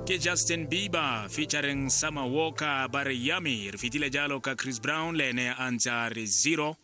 ke justin bieber featuring summer walker ba re yummy re fetile jalo ka chris brown le ene a ntse a re zero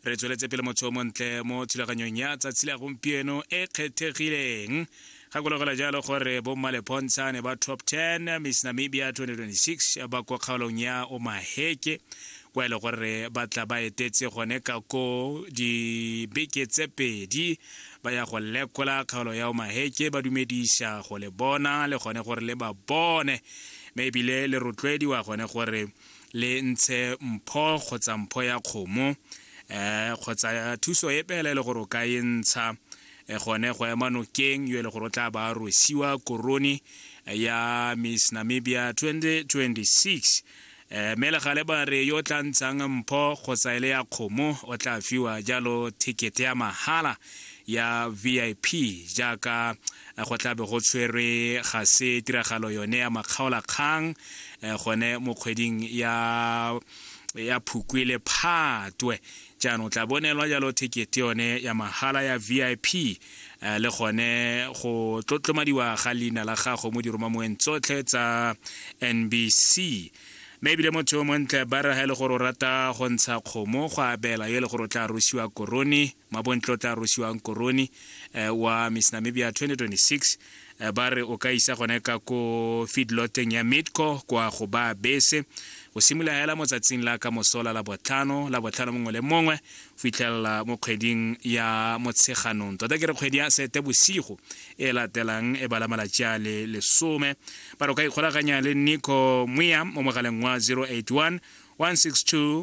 re tsweletse pele motho o montle mo thulaganyong ya tsatsi la gompieno e kgethegileng gakologela jalo gore bommalepontsha ne ba top 10 miss namibia 2026 ba kwa kgaolong ya omaheke kwa e le gore ba tla ba etetse gone ka ko dibeke tse pedi ba ya go lekola kgaolo ya omaheke ba dumedisa go le bona le gone gore le ba bone mme ebile le rotloediwa gone gore le ntshe mpho kgotsa mpho ya kgomo um kgotsa thuso e pela e le gore o ka e ntsha eh, gone go ema nokeng yo e le gore o tla ba rosiwa korone ya miss namibia 2026 Eh, mme legale ba re yo o tla ntshang mpho kgotsa e le ya kgomo o tla fiwa jalo ticket ya mahala ya vip jaaka eh, go tlabe go tshwerwe ga se tiragalo yone ya makgaolakgang eh, gone mo kgweding ya ya phukwi le phatwe Jaanong o tla bo neelwa jalo thekete yone ya mahala ya VIP eh, le gone go tlotlomadiwa ga leina la gago mo diromamoweng tsotlhe tsa NBC mme ebile motho yo montle ba re ga e le gore o rata go ntsha kgomo go abela yo e le gore o tla rosiwa korone mabontle o tla rosiwang korone eh, wa miss namibia 2026 Eh, ba re o ka isa gone ka ko feedloteng ya midco kwa go ba bese go simolola hela motsatsing la ka mosola la botlhano la botlhano mongwe le mongwe fitlhelela mo kgweding ya motsheganong tota ke re kgwedi ya sete bosigo e latelang e bala malatsi a le lesome ba re o ka ikgolaganya le nico moya mo mogaleng wa 081 162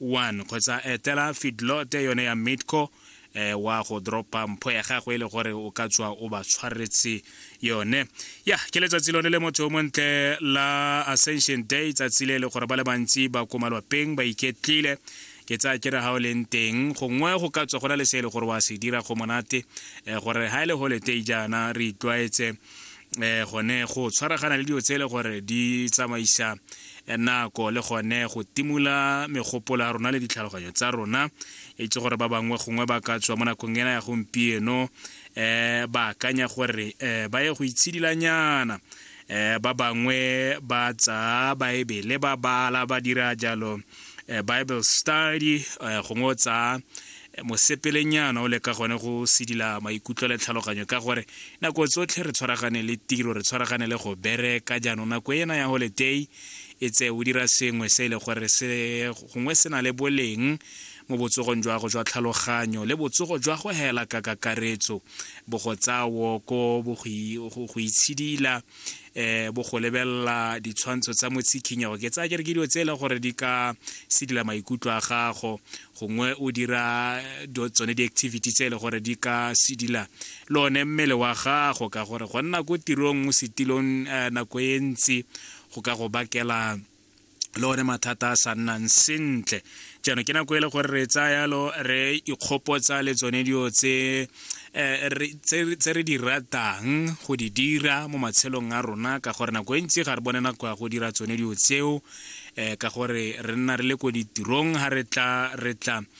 1 kgotsa etela feedlot yone ya midco eh, wa go dropa mpho ya gago e le gore o ka tswa o ba tshwaretse yone ya ke letsatsi lone le motho o montle la ascension day tsatsi le e le gore ba le bantsi ba ko malwapeng ba iketlile ke tsaya ke re ga o leng teng gongwe go ka tswa go na le se e le gore wa se dira go monate eh, gore ga e le holiday jaana re itlwaetse eh gone go tshwaragana le dilo tse e le gore di tsamaisa eh, nako le gone go timola megopolo ya rona le ditlhaloganyo tsa rona e tse gore ba bangwe gongwe ba ka tswa mo nakong ena ya gompieno um ba akanya gore um ba ye go itshedilanyana um ba bangwe ba tsaa baebele ba bala ba dira jalo um bible study um gongwe o tsaa mosepelenyana o le ka gone go sedila maikutlo le tlhaloganyo ka gore nako tsotlhe re tshwaragane le tiro re tshwaragane le go bereka jaanong nako ena ya holiday e tse o dira sengwe se e le gore se gongwe se na le boleng mo botsogong jwa go jwa tlhaloganyo le botsogo jwa go hela ka kakaretso bo go tsaya woko bo go itshidila um bo go lebelela ditshwantsho tsa motsikhinyego ke tsaya ke re ke dilo tse e leng gore di ka sedila maikutlo a gago gongwe o dira tsone di-activity tse e le gore di ka sedila le one mmele wa gago ka gore go nna ko tirong mo setilong eh, nako e ntsi go ka go bakela le one mathata a sa nnang sentle jaanong ke nako e le gore re tsaya yalo re ikgopotsa le tsone dio tse eh, tse re di ratang go di dira mo matshelong a rona ka gore nako e ntsi ga re bone nako ya go dira tsone dio tseo um ka gore re nna re le ko ditirong ga re tla re tla